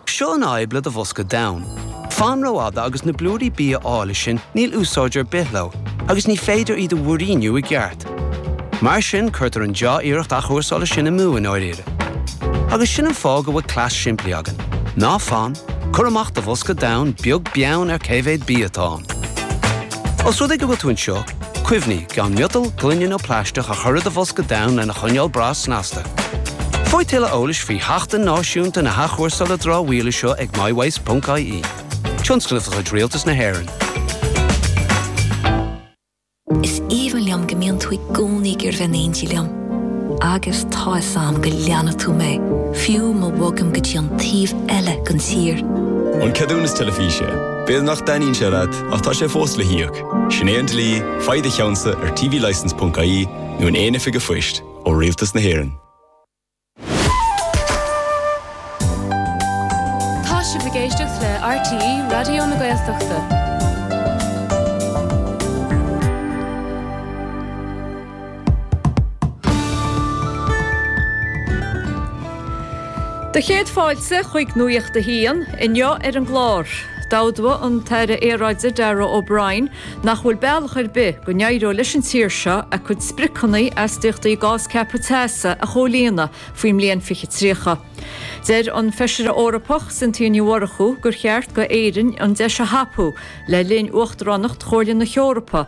Seo an fhadhb le do bhosca donn. Fan rófhada agus na blúirí bia áille sin níl úsáid ar bith leo agus ní féidir iad a mhúiríniú i gceart. Mar sin cuirtear an deá-iarracht athchúrsála sin amú i ndáiríre. Agus sin an fáth go bhfuil cleas simplí againn. Ná fan, cuir amach do bhosca donn beag beann ar cé mhéad bia atá ann. Os rud é go bhfuil tú anseo, Cuimhnigh, gan miotal, gloine nó plaisteach a chur i do bhosca donn lena choinneáil breá snasta. Faigh tuilleadh eolais faoi Sheachtain Náisiúnta na hAthchúrsála Dramhbhia seo ag mywaste.ie, tionscnamh de chuid Rialtas na hÉireann. Is aoibhinn liom go mbíonn tú i gcónaí ag iarraidh bheith in éindí liom. Agus tá fhios a'm go leanfaidh tú mé, fiú má bhogaim go dtí an taobh eile den tír. An ceadúnas teilifíse. B'fhéidir nach dtaitníonn sé leat, ach tá sé fós le híoc. Sin é an dlí, faigh do cheannsa ar tvlicense.ie nó in aon oifig a'phoist ó Rialtas na hÉireann. Tá sibh ag éisteacht le RTÉ Raidió na Gaeltachta. 'Sé do chéad fáilte chuig Nuacht a hAon. Inniu ar an gclár, d'admhaigh an tAire Aeráide Darragh O'Brien nach bhfuil bealach ar bith go n-éireoidh leis an tír seo a cuid spriocanna astaíochtaí gás ceaptha teasa a chomhlíonadh faoin mbliain 2030. Deir an Feisire Eorpach Cynthia Ní Mhurchú gur cheart d'Éirinn an deis a thapú le linn uachtaránacht Chomhairle na hEorpa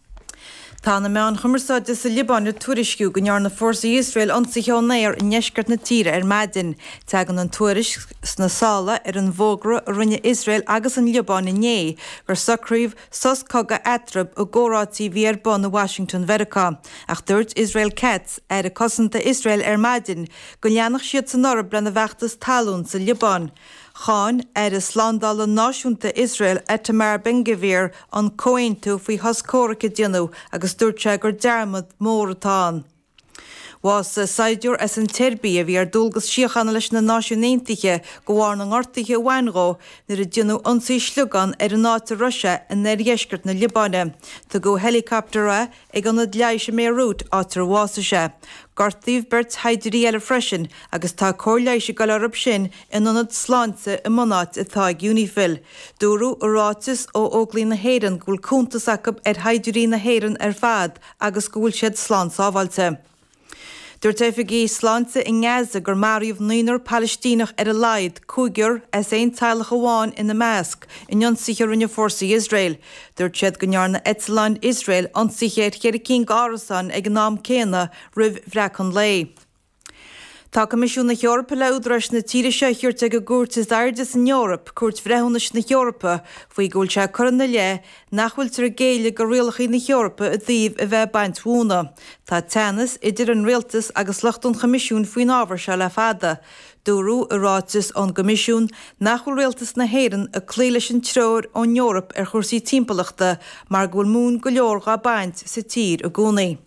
Tá na meáin chumarsáide sa Liobáin ag tuairisciú go ndearna fórsaí Iosrael ionsaithe ón aer i ndeisceart na tíre ar maidin. Teagann an tuairisc sna sála ar an bhfógra a rinne Iosrael agus an Liobáin inné gur socraíodh sos cogaidh eatarthu i gcomhráití a bhí ar bun i Washington Mheiriceá, ach dúirt Israel Katz, Aire Cosanta Iosrael ar maidin go leanfadh siad sin orthu lena bhfeachtas talún sa Liobáin. Cháin Aire Slándála Náisiúnta Iosrael Itamar Ben-Gvir an comhaontú faoi shos comhraic a déanadh agus dúirt sé gur dearmad mór atá ann. Bhásaigh saighdiúir as an tSeirbia a bhí ar dualgas síochána leis na Náisiúin Aontaithe de bharr na ngortuithe a bhain dhó nuair a déanadh ionsaí sliogán ar an áit a raibh sé in oirdheisceart na Liobáine. Tugadh i héileacaptar é. Ag Ionad Leighis i mBéiriút, áit ar bhásaigh sé, gortaíodh beirt shaighdiúirí eile freisin agus tá cóir leighis dhá fháil acu sin in ionad sláinte i mbunáit atá ag Unifil. Dúradh i ráiteas ó Óglaigh na hÉireann go bhfuil cuntas acu ar shaighdiúirí na hÉireann ar fad agus go bhfuil siad slán sábháilte. Dúirt oifigigh sláinte i nGaza gur maraíodh naonúr Palaistíneach ar a laghad, cúigear as aon teaghlach amháin ina measc, in ionsaithe a rinne fórsaí Iosrael. Dúirt siad go ndearna eitleáin Iosrael ionsaithe ar cheithre cinn d'árasáin ag an am céanna roimh bhreacadh an lae. Tá Coimisiún na hEorpa le údaráis na tíre seo a thabhairt ag an gcúirt is airde san Eoraip, Cúirt Bhreithiúnais na hEorpa, faoi go bhfuil sé ag cur ina leith nach bhfuiltear ag géilleadh go rialacha na hEorpa i dtaobh a bheith ag baint mhóna. Tá teannas idir an Rialtas agus lucht an Choimisiúin faoin ábhar seo le fada. Dúradh i ráiteas ón gCoimisiún nach bhfuil Rialtas na hÉireann ag cloí leis an treoir ón Eoraip ar chúrsaí timpeallachta mar go bhfuil móin go leor dhá baint sa tír i gcónaí.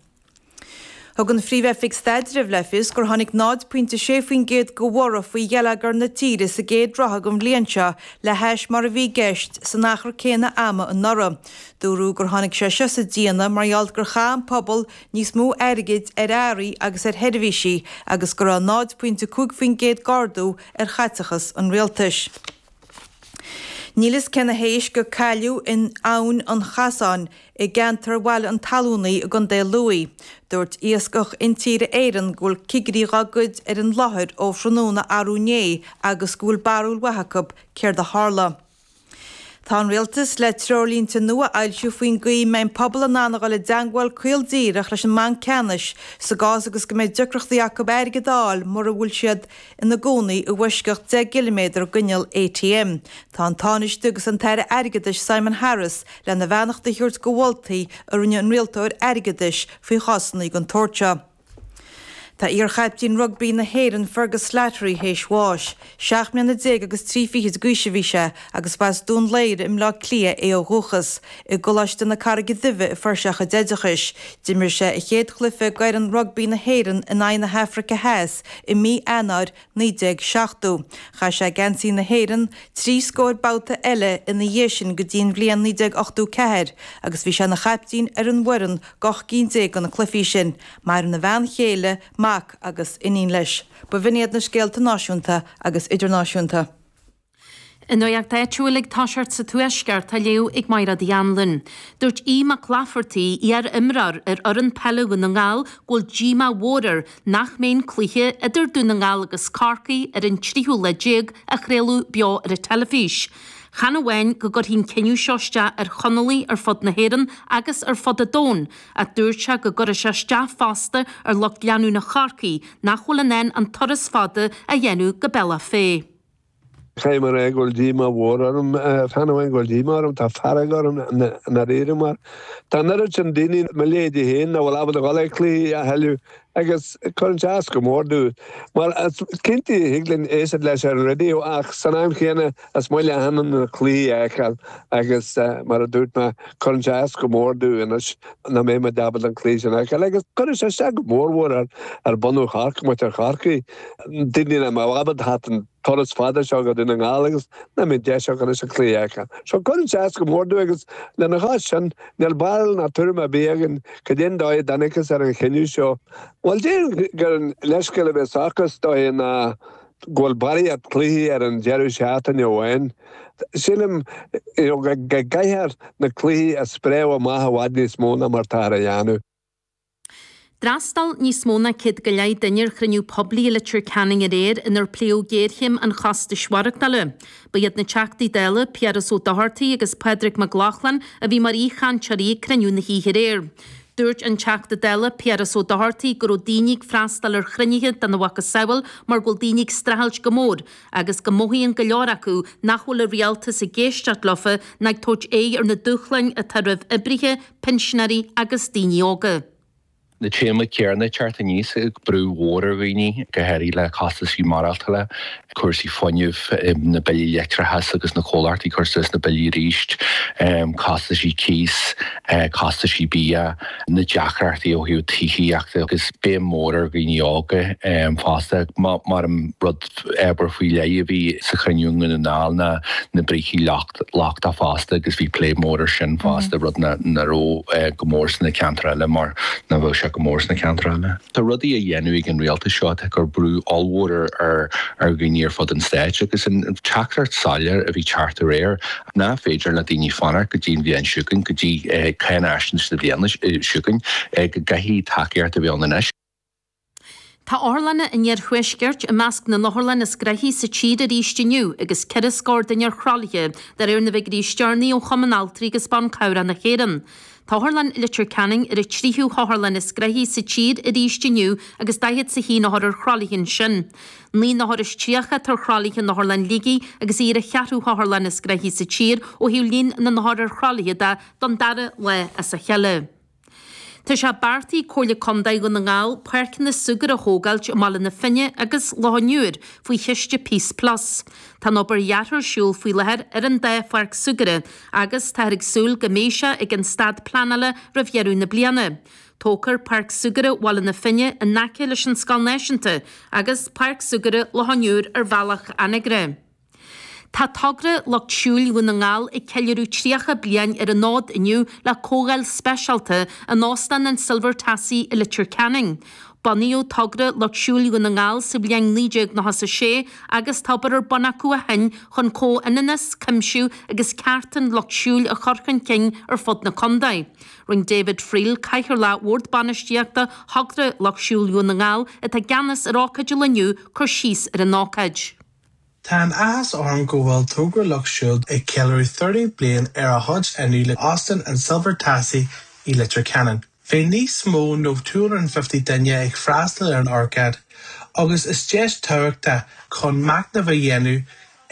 Thug an Phríomh-Oifig Staidrimh le fios gur tháinig 0.6% de bhorradh faoi gheilleagar na tíre sa gcéad ráithe den bhliain seo le hais mar a bhí i gceist san achar céanna ama anuraidh. Dúradh gur tháinig sé seo sa déanamh mar gheall gur chaith an pobal níos mó airgid ar earraí agus ar sheirbhísí agus go raibh 0.5% d'ardú ar chaiteachas an rialtais. Níl fhios cé na héisc a cailleadh in Abhainn an Chasáin i gceantar Bhaile an Tallúnaigh i gContae Lughaidh. Dúirt Iascach Intíre Éireann go bhfuil cigirí dá gcuid ar an láthair ó thráthnóna arú inné agus go bhfuil barúil mhaith acu céard a tharla. Tá an Rialtas le treoirlínte nua a fhoilsiú faoin gcaoi a mbeidh an pobal in ann a dhul i dteangmháil caol díreach leis an mBanc Ceannais sa gcás agus go mbeidh deacrachtaí acu airgead a fháil mura bhfuil siad ina gcónaí i bhfoisceacht 10 gciliméadar d'inneall ATM. Tá an Tánaiste agus an tAire Airgeadais Simon Harris lena bheannacht a thabhairt go mholtaí a rinne an Rialtóir Airgeadais faoi chásanna den tsórt seo. Tá iarchaiptín rugbaí na hÉireann Fergus Slattery théis bháis. Seacht mbliana déag agus trí fichid d'aois a bhí sé agus ba as Dún Laoghaire i mBleá Cliath é ó dhúchas. I gColáiste na Carraige Duibhe a fuair sé a chuid oideachais. D'imir sé a chéad chluife d'fhoireann rugbaí na hÉireann in aghaidh na hAfraice Theas i mí Eanáir 1970. Chaith sé geansaí na hÉireann trí scóir babhta eile ina dhiaidh sin go dtí an bhliain 1984 agus bhí sé ina chaiptín ar an bhfoireann d'ocht gcinn déag de na cluifí sin. Maireann a bhean chéile, mac agus iníon leis. B'in iad na scéalta náisiúnta agus idirnáisiúnta. An nuaíocht áitiúil ag tosacht sa Tuaisceart á léamh ag Máighreád Uí Annluin. Dúirt Aodh Mac Laifeartaigh, iar imreoir ar fhoireann peile Dhún na nGall go bhfuil díomá mhór air nach mbeidh an cluiche idir Dún na nGall agus Corcaigh ar an tríú lá déag á chraoladh beo ar an teilifís. Chan amháin go gcuirfidh an cinneadh seo isteach ar Chonallaigh ar fud na hÉireann agus ar fud an domhain, ach dúirt sé go gcuirfidh sé isteach fosta ar lucht leanúna Chorcaí nach bhfuil in ann an turas fada a dhéanamh go Bealach Féich. Tá mar a bheadh díomá mhór orm, chan amháin go bhfuil díomá orm, tá fearg orm i ndáiríre mar tá an oiread sin daoine, mo leithéidí féin, nach bhfuil ábalta dul ag cluichí a thuilleadh agus cuireann sé as go mór dúinn. Mar is cinnte thig linn éisteacht leis ar an raidió ach san am chéanna is maith linn na cluichí a fheiceáil agus mar a dúirt mé cuireann sé as go mór dúinn anois nach mbeimid ábalta an cluiche sin a fheiceáil agus cuireann sé isteach go mór mhór ar bunadh Chorcaí. Daoine, níl mé ábalta an turas fada seo go Dún na nGall agus nach mbeidh deis agam anois an cluiche fheiceáil so cuireann sé as go mór dom agus lena chois sin níl barúil ná tuairim ar bith againn cad é an dóigh a dtángthas ar an chinneadh seo. Bhuel déarfainn gur leithscéal a bheas acu is dóiche ná go bhfuil barraíocht cluichí ar an deireadh seachtaine amháin. Sílim go gcaithfear na cluichí a spréamh amach i bhfad níos mó ná mar táthar a dhéanamh. D'fhreastail níos mó ná céad go leith duine ar chruinniú poiblí i Leitir Ceanainn aréir inar pléadh géarchéim an chostais maireachtála. Ba iad na Teachtaí Dála, Piaras Ó Dochartaigh agus Pádraig Mac Lochlainn, a bhí mar aoichainteoirí ag cruinniú na hoíche aréir. Dúirt an Teachta Dála, Piaras Ó Dochartaigh, go raibh daoine ag freastal ar chruinnithe den mhacasamhail mar go bhfuil daoine ag streachailt go mór agus go mothaíonn go leor acu nach bhfuil an rialtas ag éisteacht leofa ná ag tabhairt aghaidh ar na dúshláin atá roimh oibrithe pinsinéirí agus daoine óga. Na téamaí céanna ag teacht aníos brú mór ar dhaoine, go háirithe le costaisí maireachtála, cúrsaí fuinnimh, na billí leictreachais agus na comhlachtaí ag cur suas na billí arís, costaisí cíosa, costaisí bia, na deacrachtaí ó thaobh tithíochta agus béim mhór ar dhaoine óga fosta. Mar an rud. Ábhar faoi leith a bhí sa chruinniú i nDún na nGall ná na brící lachta fosta agus bhí plé mór ar sin fosta, rud nach raibh go mór sna ceantair eile mar nach bhfuil sé go mór sna ceantair eile. Tá rudaí á dhéanamh ag an Rialtas seo atá ag cur brú ollmhór ar dhaoine ar fud an Stáit agus an teachtaireacht soiléir a bhí ag teacht aréir nach féidir le daoine fanacht go dtí an bhliain seo chugainn, go dtí cáinaisnéis na bliana seo chugainn, go gcaithfidh tacaíocht a bheith ann anois. Tá otharlanna an Iarthuaiscirt i measc na n-otharlann is gnoithí sa tír arís inniu agus ceithre scór duine ar thralaithe, de réir na bhfiguirí is deireanaí ó Chumann Altraí agus Ban Cabhrach na hÉireann. Tá Otharlann Leitir Ceanainn ar an tríú hotharlann is gnoithí sa tír arís inniu agus daichead is a haon othar ar thralaithe ansin. Naoi n-othar is tríocha atá ar thralaithe in Otharlann Shligigh agus í ar an cheathrú hotharlann is gnoithí sa tír ó thaobh líon na n-othar ar thralaithe de don dara lá as a chéile. Tá sé beartaithe ag Comhairle Contae Dhún na nGall páirceanna súgartha a thógáilt i mBaile na Finne agus Loch an Iúir faoi chiste Peace Plus. Tá an obair dheartha ar siúl faoi láthair ar an dá pháirc súgartha agus táthar ag súil go mbeidh sé ag an staid pleanála roimh dheireadh na bliana. Tógfar Páirc Súgartha Bhaile na Finne in aice leis an Scoil Náisiúnta agus Páirc Súgartha Loch an Iúir ar bhealach Anagaire. Tá togra Lucht Siúil Dhún na nGall ag ceiliúradh 30 bliain ar an fhód inniu le comhdháil speisialta in Óstán an Silver Tassie i Leitir Ceanainn. Bunaíodh togra Lucht Siúil Dhún na nGall sa bhliain 1996 agus tá obair ar bun acu ó shin chun comhionannas, cuimsiú agus cearta an lucht siúil a chur chun cinn ar fud na condae. Rinn David Friel, Cathaoirleach Bhord Bainistíochta Thogra Lucht Siúil Dhún na nGall atá i gceannas ar ócáid an lae inniu cur síos ar an ócáid. Tá an-áthas orm go bhfuil Togra Lucht Siúil ag ceiliúradh 30 bliain ar an fhód inniu in Óstán an Silver Tassie i Leitir Ceanainn. Beidh níos mó ná 250 duine ag freastal ar an ócáid agus is deis tábhachtach chun macnamh a dhéanamh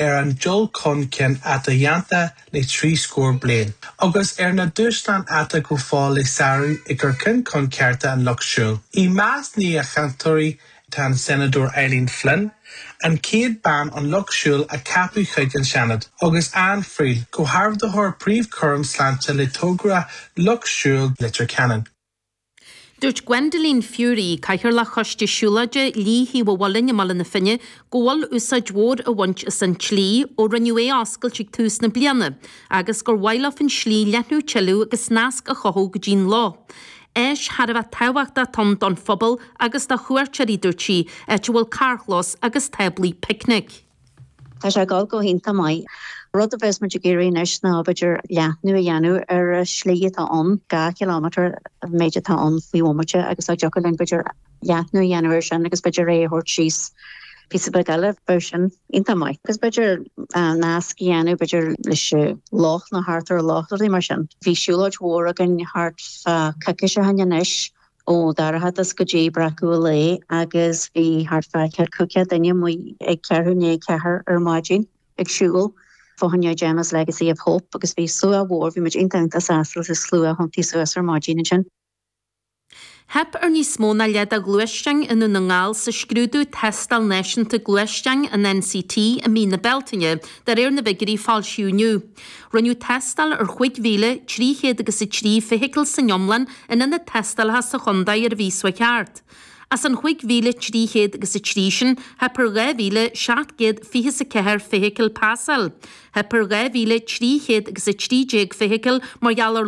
ar an dul chun cinn atá déanta le trí scór bliain agus ar na dúshláin atá go fóill le sárú i gcur chun cinn cearta an Lucht Siúil i measc na n-aoichainteoirí Tá an Seanadóir Eileen Flynn, an chéad bhean den lucht siúil a ceapadh chuig an Seanad, agus Ann Friel, Comhordaitheoir Príomhchúram Sláinte le Togra Lucht Siúil Leitir Ceanainn. Dúirt Gwendoline Furey, Cathaoirleach Choiste Siúlóide Shlí Thaobh an Mhuilinn i mBaile na Finne go bhfuil úsáid mhór á baint as an tslí ó rinneadh é a oscailt ag tús na bliana agus gur mhaith leo an tslí a leathnú tuilleadh agus nasc a chothú go dtí an loch Áis thar a bheith tábhachtach atá ann don phobal agus do chuairteoirí dúirt sí, áit a bhfuil carrchlós agus táblaí picnic. Tá sé ag dul go hiontach maith. Rud a bheas muid ag iarraidh anois ná b'fhéidir leathnú a dhéanamh ar an slí atá ann, dhá chilómeter an méid atá ann faoin bhomaite agus dá dtiocfadh linn b'fhéidir, leathnú a dhéanamh ar sin agus b'fhéidir é a thabhairt síos píosa beag eile, bheadh sin iontach maith. Agus b'fhéidir nasc a dhéanamh b'fhéidir leis an loch nó thart ar an loch, rudaí mar sin. Bhí siúlóid mhór againn thart fá coicís ó shin anois Ó Dhorchadas go dtí breacadh an lae agus bhí thart fá ceithre, cúig chéad duine amuigh ag ceathrú i ndiaidh a ceathair ar maidin ag siúl fá choinne Gemma's Legacy of Hope agus bhí slua mór, bhí muid iontach iontach sásta leis an slua a thiontaigh suas ar maidin ansin. Theip ar níos mó ná leath de ghluaisteáin i nDún na nGall sa scrúdú Tástáil Náisiúnta Gluaisteáin, an NCT, i mí na Bealtaine, de réir na bhfiguirí a foilsíodh inniu. Rinneadh tástáil ar chúig mhíle, trí chéad agus a trí, feithicil san iomlán in ionaid tástála sa chontae ar an mhí s'chuaigh thart. As an chúig mhíle, trí chéad agus a trí sin, theip ar dhá mhíle, seacht gcéad, fiche is a ceathair, feithicil pasáil. Theip ar dhá mhíle, trí chéad agus a trí déag, feithicil mar gheall ar